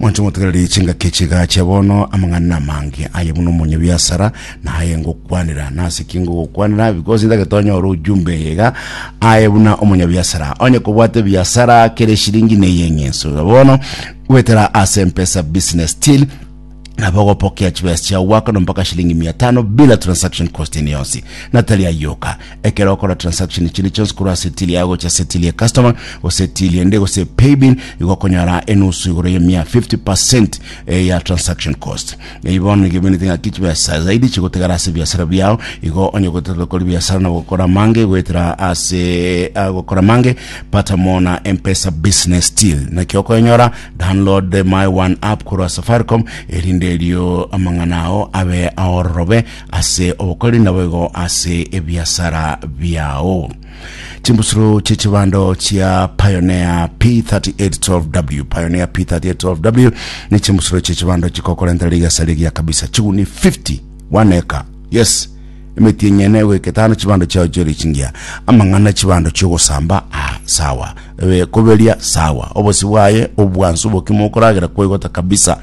Monto motegereri chingaki chigacha bono amang'ana amange aye buna omonye biasara na aye ngokwanera na ase kingo gokwanera because ndagete onyore ujumbe yega aye buna omonye biasara onye kobwate biasara kere shilingi ne yeng'enso bono gwetera ase mpesa business still nabo ogopokea chibesa chiao gwaka no mpaka shilingi mia tano bila transaction cost ene yonsi natari ayoka ekero okora transaction chinde chionsi korwa setili yao gocha setili ya customer gose tili ende gose paybill igokonyora enusu igoro ya mia 50% eh, ya transaction cost ibono igemenete ng'aki chibesa zaidi chigotegara ase biasara biao igo onye gotaka kori biasara na gokora mange gwetera ase ah, gokora mange pata mona mpesa business deal naki okoenyora Download the my one app korwa safaricom erinde erio amang'ana ao abe aororobe ase obokori naboigo ase ebiasara biao chimbusuro chichibando chia pioneer p3812w pioneer p3812w ni chimbusuro chichibando chikokorentera rigasa rigia kabisa chiguni 50 one acre yes Emetienyi ene egoiketana chibando chiao chi'ore chingiya, amang'ana chibando chi'ogosamba aa sawa, ebe koberia sawa, obosio bwaye obwansu obokima okoragera koigota kabisa.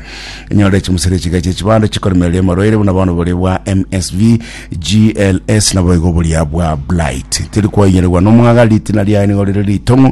Enyore chimosera echiga chie chibando chikoremereria amarwaire buna bono boria bwa MSV, GLS naboigo boria bwa Blight. Teri koinyeregwa nomwaga, ritina riaye nigo rire ritong'u,